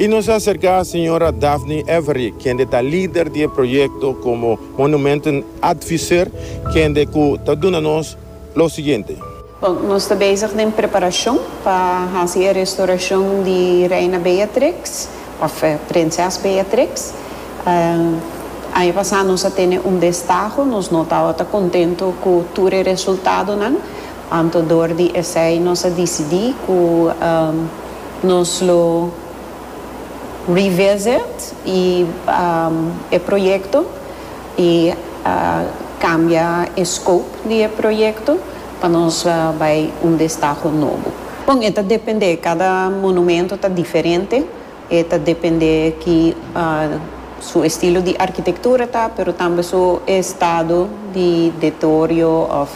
I nos a acerca Señora Daphne Avery, kende ta lider di e proyecto como Monumenten Advisor, kende cu ta duna nos lo siguiente. Bon, nos ta bezig den preparacion pa haci e restauracion di Reina Beatrix, of Prinses Beatrix. Aña pasa nos a tene un destaho, nos no tabata contento cu tur e resultadonan, Anto dor di esei nos a disidí ku nos lo revisit e e proyekto i kambia e scope di e proyekto pa nos bai un destaho nobo. Bon e ta dependé, kada monumento ta diferente, E ta depende ki su estilo di arkitektura ta, pero tambe su e estado di detorio òf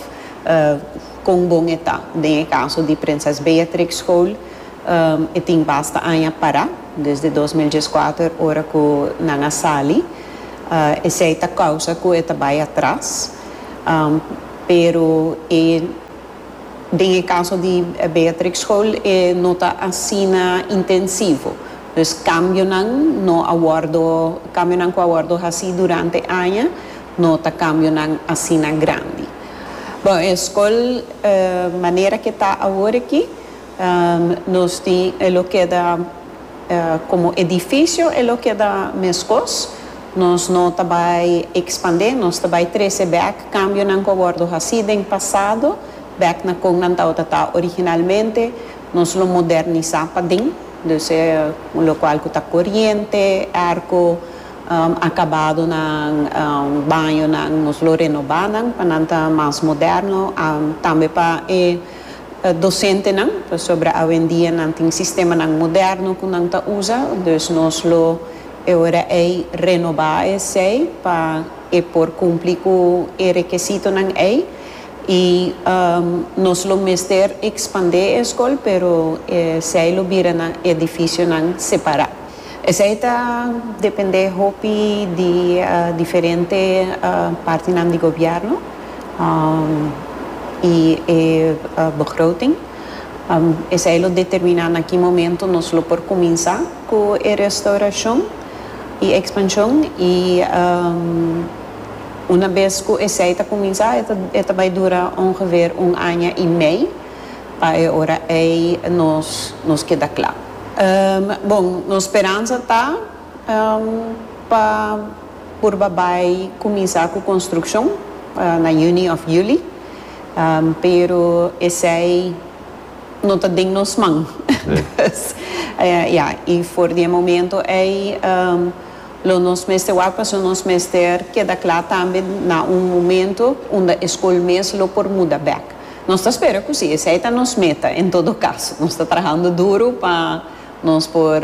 kon bon e ta. Den e kaso di Prinses Beatrix School e tin basta aña pará, desde dos mil dieskuater ora ku nan a sali. Esei ta kousa ku e ta bai atras, pero e. Den e kaso di Beatrix School e no ta asina intensivo. Dus kambionan no a wòrdu, kambionan ku a wòrdu hasi durante aña no ta kambionan asina grandi. Bon, e skol manera ke ta awor aki. Nos tin e lo keda komo edifisio e lo keda meskos, nos no ta bai ekspandé, nos ta bai trese bèk kambionan ku a wòrdu hasí den pasado, bèk na kon nan tabata originalmente, nos lo modernisá paden, dus e un lokual ku ta koriente, èrko, akabadonan, bañonan, nos lo renobá nan pa nan ta mas moderno, tambe pa e. docentenan, pasobra awendia nan tin sistemanan moderno cu nan ta usa, dus nos lo e ora ey renoba esey pa e por cumpli cu e rekesitonan ey y nos lo mester expande e escol pero esey lo bira nan edificionan separa. Esei ta dependé hopi di diferente partinan di gobièrnu i e begroting. Esei lo determiná na ki momentu nos lo por kuminsá ku e restaurashon i ekspanshon i unabes ku esei ta kuminsá e ta bai dura ongeveer un aña i mei. Pa e ora ei nos nos keda kla. Bon, nos speransa ta pa purba bai kuminsá ku konstrukshon na yüni òf yüli, pero esei no ta den nos man. Pues, ya, i for di e momento ei lo nos mester wak pasobra nos mester keda kla tambe na un momento unda e skol mes lo por muda bèk. Nos ta spera cu si esey ta nos meta, en todo caso, nos ta trahando duro pa nos por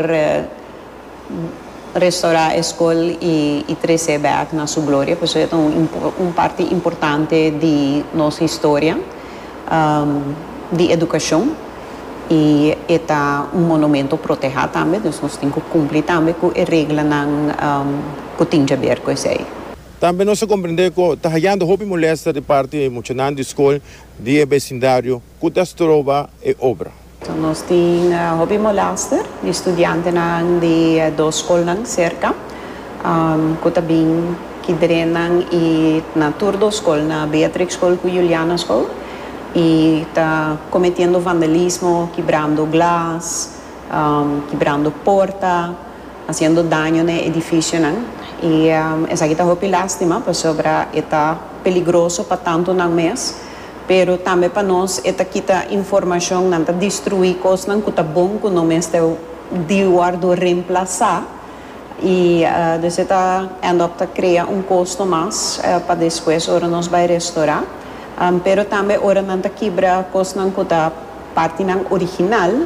restora e scol y trece back na su gloria, pasobra e ta un parti importante di nos historia di educacion y e ta un monumento proteha tambe, nos tin cu cumpli tambe cu e reglanan cu tin djaber cu esey. Tambe nos a komprendé ku ta hayando hopi molèsta di parti di muchanan di skol di e besindario ku ta stroba e obra. Nos tin hopi molèster di studiantenan di e dos skolnan serka ku ta bin ki drenan i na tur dos skol, na Beatrix Skol ku Juliana Skol, i ta kometiendo vandalismo, kibrando glas, kibrando porta. Haciendo daño na e edificionan y esaki ta hopi lastima pasobra e ta peligroso pa tantonan mes, pero tambe pa nos e ta kita informacion, nan ta destrui cosnan cu ta bon cu no mester di wordo reemplaza y dus e ta end up ta crea un costo mas pa despues ora nos bay restora, pero tambe ora nan ta kibra cosnan cu ta partinan original